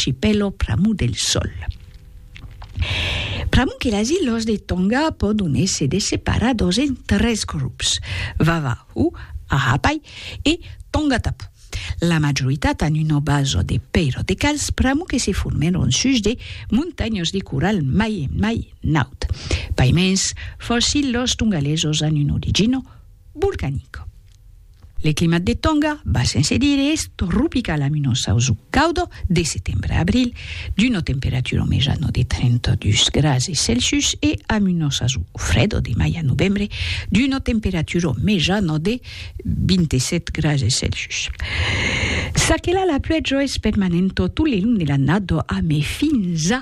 Archipèlo pr'amor del sòl. Pr'amor que las ilhas de Tonga pòdon èsser desseparadors en tres grops, Vavahu, Ha'apai e Tongatapu. La majoritat an una basa de pèira de calç pr'amor que se formèron sus de montanhas de coral mai en mai naut. Paimens, fòrça ilhas tongalesos an una origina volcanica. Le climat de Tonga, bas sense dire, es tropical amb un ossauso caudo de setembre a abril, d'una temperatura au mejano de 32 grase Celsius e amb un ossauso fredo de mai a novembre, d'una temperatura au mejano de 27 grase Celsius. Çaquelà la pluèja es permanenta tot le long de l'annada, amé fins a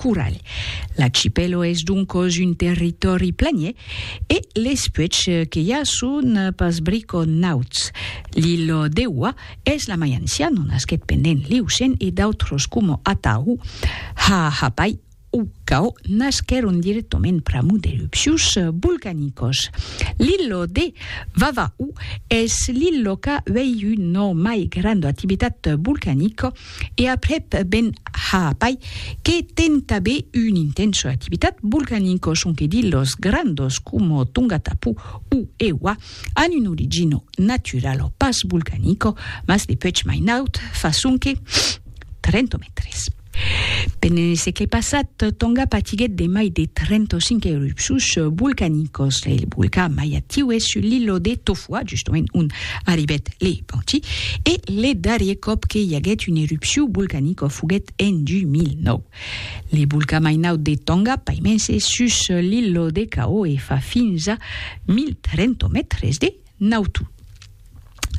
Coralh. L'achipèlo es doncos un territòri planier e les puèchs que i a son pas briconauts. L'ilho Deua es la mai ancian, o nasquèt pendent l'Iocèn e d'autros coma Atahu, Ha'apai o Ka'o nasquèron dirèctament pr'amor d'erupcius volcanicos. L'ilho de Vava'u es l'ilho qu'a uèi un o mai granda activitat volcanica, E aprèp Ben Ha'apai, que ten tabé un intent sus l'activitat volcanica, sonque dit los grandos coma Tongatapu o Ewa an una origina naturala, pas volcanica, mas de puèch mai naut, fa sonque 30 mètres. Pendent lo sègle passat, Tonga patiguèt de mai de 35 erupcions volcanicas. Lo volcan mai actiu es sus l'illa de Tofua, justament ont Arribèt le Panchi e le darrier còp que i aguèt un erupciu volcanicò foguèt en 2009. Le volcà mai naut de Tonga paimens es sus l'illo de Cao e fa fins a 1.300 mètres de nautor.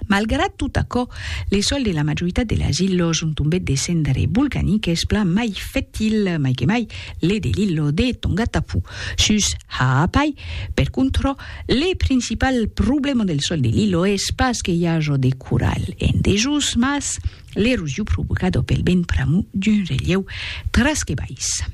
Malgrat tot aquò, le sòl de la majoritat de las illos ont tombèt de cendres volcaniques plan mai fertil, mai que mai le de l'illo de Tongatapu. Sus Ha'apai, per contrò, Le principal problèma del sòl de l'Ilo es pas que i aja de coral en dejós, mas l'erosion provocada pel vent pr'amor d'un relhèu tras que baissa.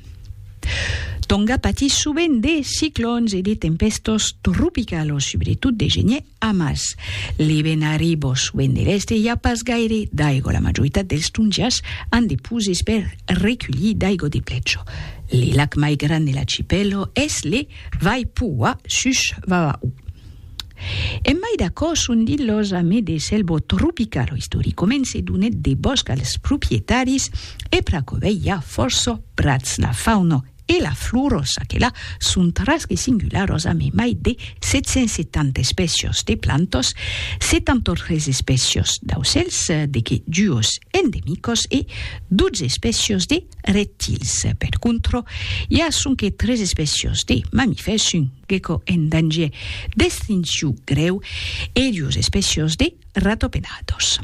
Tonga patís sovent de ciclòns e de tempèstas tropicalas, subretot de genièr, amas le vent arriba sovent de l'èst e i a pas gaire d'aiga. La majoritat dels tongiás an de poses per reculhir d'aiga de plèja. Le lac mai grand de l'archipèla es le. Vai pua sus Vava'u. En mai d'aquò son dit los amis de Selvo Tropical o Istorico men se donèt de bòsc als proprietaris e pr'aquò vei ja fòrça prats la fauna e la flora çaquelà son tras que singularòs amé mai de 770 espècios de plantas 73 espècios d'aucèls de que duos endemicos e 12 espècios de Reptils, per contro, i a sonque tres espècias de mamifèrs, un gecko en danger d'extincion grèu e duas espècias de ratopenators.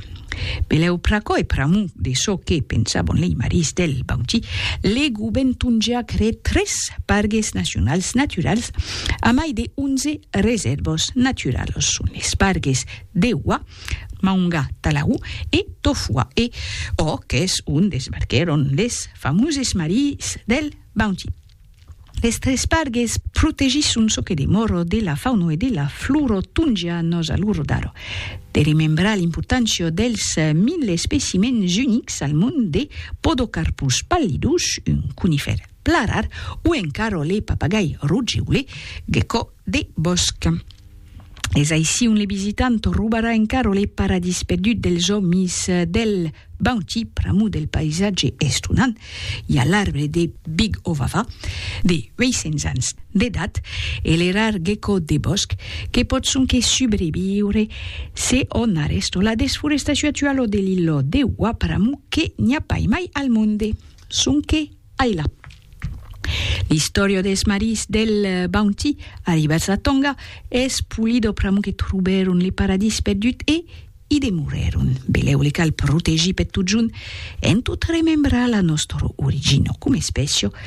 Belèu pr'aquò e pr'amor de çò que pensabon lei marís del Bauti, le govèrn tongià creèt tres pargues nacionals naturals a mai de 11 resèrvas naturalas. Son es pargues de Wah, Maunga, Talaru e Tofua e ò qu'es ont desbarquèron les famoses maries del Bounty. Les tres pargues protegisson çò que demòro de la fauno e de la floro tonja nos a lor daro. De remembrar l'importància dels 1000 especimèns unics al mond de Podocarpus pallidus, un conifèr plan rar, o encara le papagai rogeule, Gecko de bòsc. Es aicí ont le visitant robarà encara le paradís perdut dels òmis del Bounty, pr'amor del paisatge estonant. I a l'arbre de Big Ovava, de 800 ans d'edat, e le rar gecko de bòsc, que pòt sonque subreviure se o n'a rèsto la desforestacion actuala de l'illòt de Wa pr'amor que n'i a pas mai al monde. Sonque Ai la! L'istòria dels marins del Bounty arribats a Tonga, es Pulido pr'amor que trobèron le paradís perdut e i demorèron. Belèu le cal protegir per totjorn, en tot remembrar la nòstra origina com espècia,